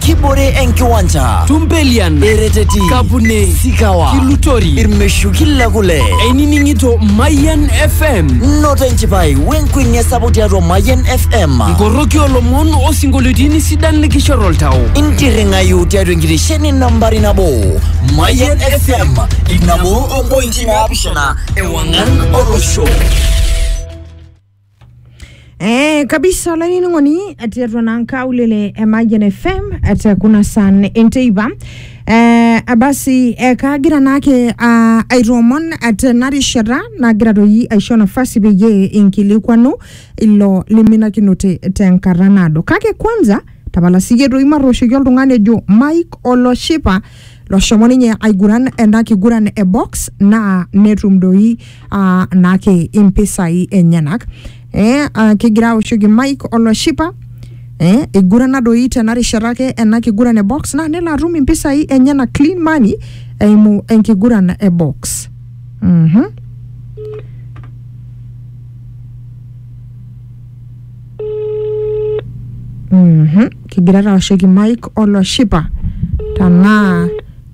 kibore enkiwanja Tumpelian, ereteti Kapune, sikawa Kilutori, irmeshuki le kule einining'ito Mayian FM, noto enchipai wenkuenia sapuk tiatua mayian fm nkoroki olomon osinkolioitin sidan likishor oltau. intirring'ayu tiatua enkitesheni nambari nabo mayian fm ip nabo ompointi naapishana ewang'an olosho Eh, kabisa olainining'oni etii atua naa nkaulele e Mayian FM te kuna san enteipa eh, basi eh, kagira naake ah, aitoomon tena rishata nagira toi aisho nafasi peyie inkilikwanu ilo liminakinote tenkata naado kake kwanza tapala siyie toi matooshoki oltung'ani ojo Mike oloshipa loshomo ninye aiguran ena kiguran e box naa netum doi ah, naake impisai enyenak eh, ah, kigira aoshoki Mike oloshipa eh, igurana doi tena rishata ake ena kiguran e box naa nelo atum impisai enyenak clean money eimu enkiguran e box mhm Mhm. kigira taoshoki mike oloshipa tanaa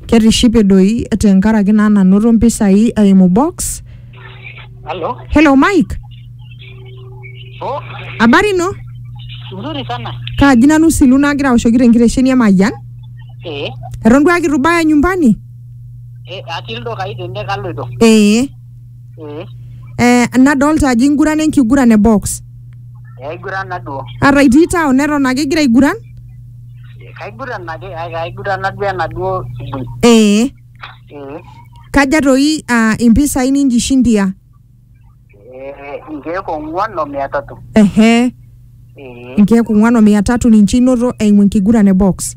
ketishipe doi tenkaraki naa nanoto mpisai eimu box Halo. hello mike Oh, habari ino nzuri sana. kaaji nanu silu nagira aoshoki tenkitesheni emayian Eh, eton duake itu ibaya nyumbani eh, atii ildukai tene kaloito. ee ee Eh, nadolta ajo ingurana enkiguran e box. aiguran naduo Ata itii town neton ake igira aiguran? kaiguran ake ai- kaiguran naduo enaduo shughuli Ee. ee Kaja toi ah, impisai ninjishindia? ee inkeek ong'uan o mia tatu Ehe. ee nkeek ong'wan o mia tatu ninche inoto eimu enkiguran e box.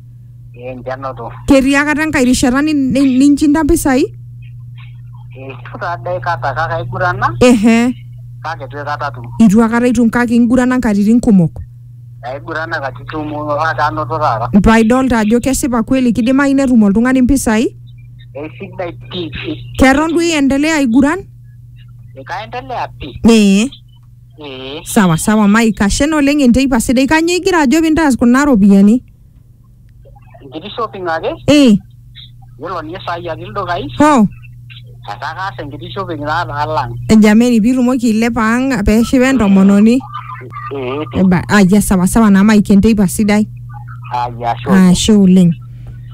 ee ninche anoto Ketii akata enkae rishata ni- ni- ninchinda mpisai? eitu taa dei kata kake aigurana Ehe, kake itu aikata atum itu akata itum kake ingurana nkatitin kumok. aigurana katitin kumok kake anoto taata Paa idolta ajo kesipa kweli kidimayu netum oltung'ani mpisai? eisidai pii pii Keton duo iendelea aiguran? ekaendelea pii Ee. ee sawa sawa mike ashe naa oleng enteipa sidai kanyoo igira ajo pintaas kuna ropiyiani enkiti shopping ake ee yiolo ninye saai atii ildukai ho etaa kaas enkiti shopping taata alang jameni pitumoki ailepa ang peshipa entomononi ee pi Eba- ayia sawa sawa naa mike enteipa sidai aya ashe oleng. ashe oleng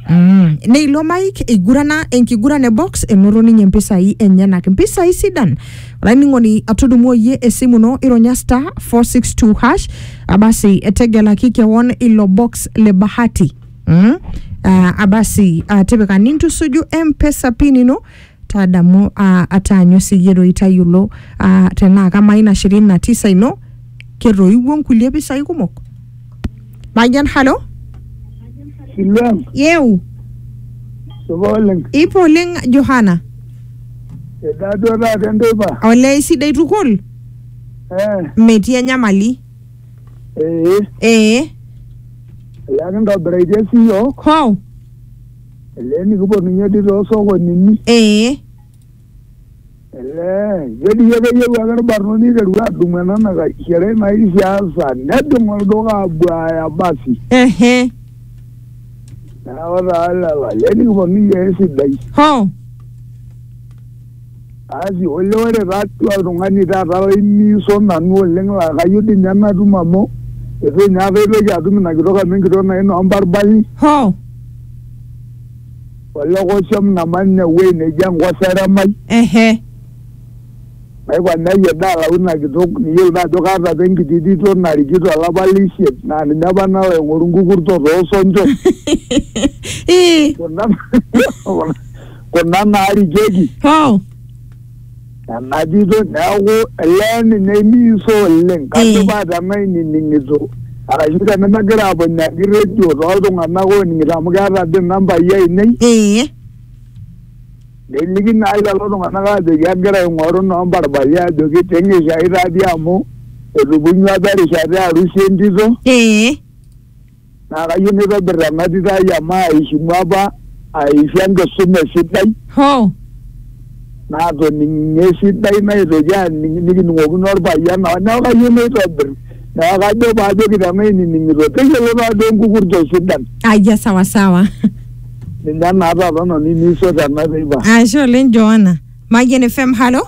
Mm. neilo mike eigurana enkiguran e box enoto ninye mpisai enyenak mpisai sidan olainining'oni atudumuo iyie esimu ino ironya star 462 hash abasi etegelaki kewon ilo box le bahati mm? uh, abasi uh, tipika nintusuju mpesa pin ino tadamu uh, ataanyu siyie doi tayiolo uh, tenaa kamaa ina shirini na tisa ino ketoiwuo nkulie pisai kumok Majan halo. Silaam. Yew. Suba oleng. Ipo oleng Johana. Edaa duo taata enteipa. Olee sidai tukul. Eh. Metii enyamali. Ee. Ee. Olee kintobiraitie sii iyiook. Hoo. Olee nikipuo ninye dii too sokonini. Ee. Ketii ake eyieu ake irbarnoti eiteru adumu ena nakaishera ina kishaasa nejing olduka abuaya basi. Ehe. Neeku taa lelo ale nikiponu iyiook esidai. Hoo. Asi olee ore taatoi oltung'ani taata laimiiso nanu oleng laa kayieu dii ninye natum amu eitu ninye aitoki atum ina kitok amu enkitok naa inoombarbarri. Hoo. Olokosom naman ine wuei neji Enkoseremai. ehe Naipang neyai edaa alau ina kitok niyiolo naa ajo kaata apa enkiti tito narikito olapa le isiet naa ninye apa nalo aing'oru nkukurto too sonchon. Ii, Kuna kuna naarikieki. hoo Najoito neaku elee ninye imiiso oleng kajo eh. paa tenaa inining'ito arashu tenemagira aponyaaki redio toltung'anak ooning'ito amu keeta dii nambai ainei eh. neliki naa lelo tung'anak aajoki agira aing'oru noo mbarbali ajoki ting'ishai taadii amu etupunyua apa erishata e arusi entito eh. naa kayieu nitobir ena tito ai amu aishimu apa aisho enkisuma esidai Hoo. naatoning'ie esidai naitoki aning nikining'okino orpayian naa neeku kayieu naitobir neeku kajo paajoki tenaa inining'ito teyiolo taadoi enkukurto sidan Ayia sawa sawa. ninye naa taata nanu iniisho tena teipa Ashe oleng Joanna. Mayian FM, halo.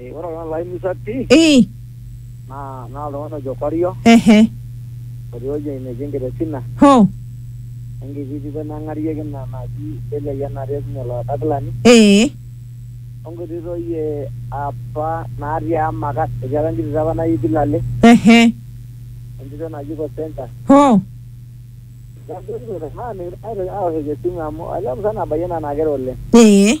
Eh, ore oltung'ani laimusa pii Eh, naa naa oltung'ani ojo Korio ehe, otii ewueji neji Enkiresina ho, enkiti tito neng'arieki ina naji Delia Yianati e Sinye Olodakilani eh, onkiti toi eh, apa natii Amakat etii apa enkiti tito apa naji Pilale ehe, entito naji Kosenta ho, Neeku aitoki aoshoki esimu amu olee musana abayie naa naa kera oleng eh,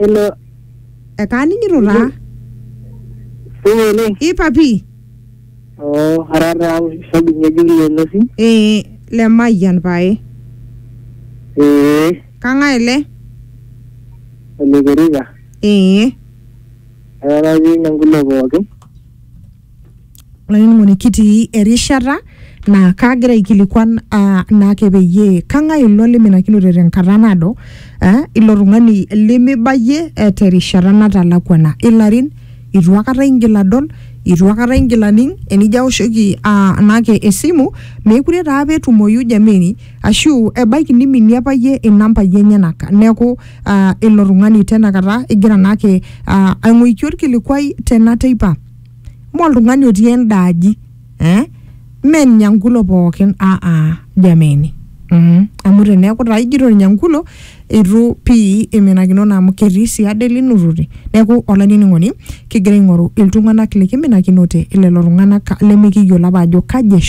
Hello. ekaaning'ito taa Supa oleng. i papi Oo, ara taa shabiki ng'ejuk le Nosim. ee le mayian pae Ee, kang'ae ele ole Kericha. ee Ara taa atii ine nkulo pookin. olainining'oni kitii erishata naa kaagira aikilikuan ah, naake peyie kang'ae ilo liminakinote tenkata naado eh, ilo tung'ani limibayie eh, terishata natalakuana ilarin itu akata ingil adol itu akata ingil aning enijo aoshoki ah, naake esimu meekure taa apa etumoyu jameni ashu ebaiki niminie apa iyie inambai enyenak neeku ah, ilo tung'ani tenakata igira naake ah, aing'oiki orkilikuai tena teipa mme oltung'ani otii enda aji eh? mme Nyangulo pookin ah, ah, jameni mm. amu teneeku taa ijito Nyangulo itu pii iminakinono amu ketii sii ade linutote neeku olainining'oni kigira aing'oru iltung'anak likiminakinote lelo tung'anak lemikiyiolo apa ajo kaji eshu